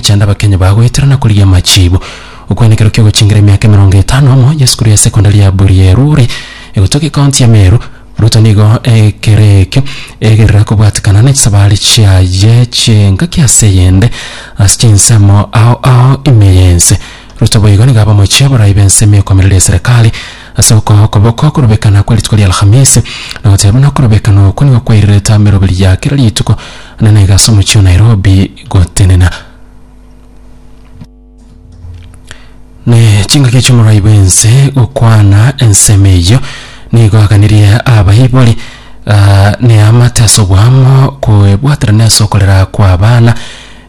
Chanda abakenyi bao goetera na korigia amachiibo. Okwenekero ki'ogochingera emiaka emerongo etano amo y'esukuru ya sekondari ya Burieruri, egotoka ekaonti ya Meru. Ruto nigo ekereekio egerera kobwatekana ne chisabari chiaye chi'engaki ase eyende ase chinsemo ao ao ime y'ense. Ruto boigo nigo abe omochie oborai b'ense ime ekomereri ya serikali ase okoa okoboko okorobekana kwe rituko ri'Alhamisi na goteba buna okorobekana okwo nigo kwairirete ameroberi ya kera rituko na naiga ase omochie o Nairobi gotenena. Ne chingaki ch'omorai bw'ense gokwana ensemo eyio nigo aganerie abaibori ah, neamate ase obwamo koebwaterana ase okorera kw'abana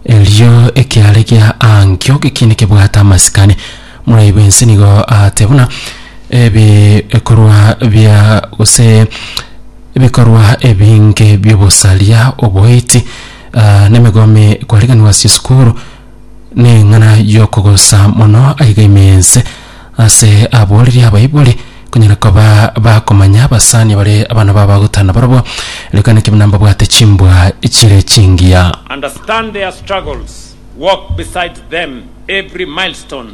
erio ekiaare gia ankio gekiine kebwate amasikani morai bw'ense nigo aate buna ebikorwa bia gose ebikorwa ebinge bi'obosaria oboiti Ah, nemegome kwariganwa ase esukuru neng'ana yokogosa mono aiga ime ense ase aboreri abaibori konyara koba bakomanya abasani bare abana babo bagotana barabwo rekane kebe nambabwate chimbwa chire chingiya Understand their struggles, walk beside them every milestone,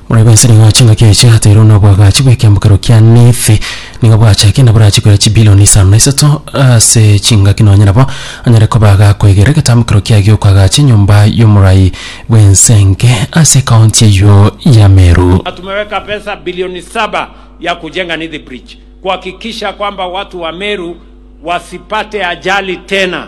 Bono igo ense nigo yachia engaki yaye chiateirwe n'obwagachi bw'ekiamokero kia Nefi. Nigo bwachakire na borachie koira chibilioni isano na isato ase chingaki nonye nabo anyare koba agakoigerera egetamokero kiaye gi'okoagacha enyomba y'omorai bw'ensenge ase ekaonti eyio ya Meru. Na tumeweka pesa bilioni saba ya kujenga Nithi Bridge kuhakikisha kwamba watu wa Meru wasipate ajali tena.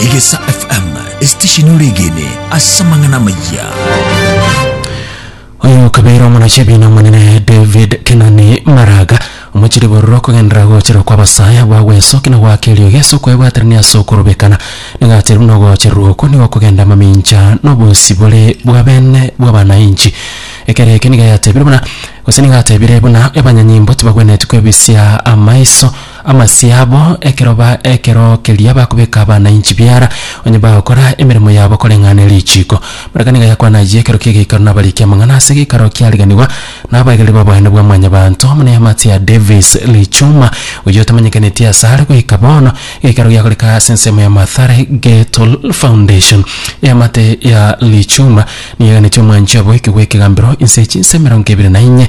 Egesa FM, esitesheni oregene ase amang'ana amayia. oyo okabeire omonachi ebiina omonene david kenani maraga omochiri bororo kogendera gochera kw'abasaya bagwesoki na gwaka erio gese okwebwaterania ase okorobekana nigacheru na ogocherwa okwo nigo kogenda amamincha na obosibore bwa bene bw'abanainchi ekero eke nigo yatebire buna gose nigo atebire buna abanyanyimbo tibagwenetie kwebisia amaiso Amasio abo ekero ba ekero keria bakobeka abana inchi biara, onye bagokora emeremo yabo koreng'ana richiiko. Baraka nigo yakwana ayio ekero ki'egeikaro nabariki amang'ana ase egeikaro kiariganigwa nabaegeri b'oboene bwa Mwanyabaanto, muna Amatia Davis Lichuma, oyio otamanyekaneti ase are goika bono. Egeikaro giakoreka ase ensemo ya Mathare Ghetto Foundation. Eamate ya Lichuma nigo eganeti omwanchi oboikigwa ekegambero inse chinsa emerongo ebere na inye.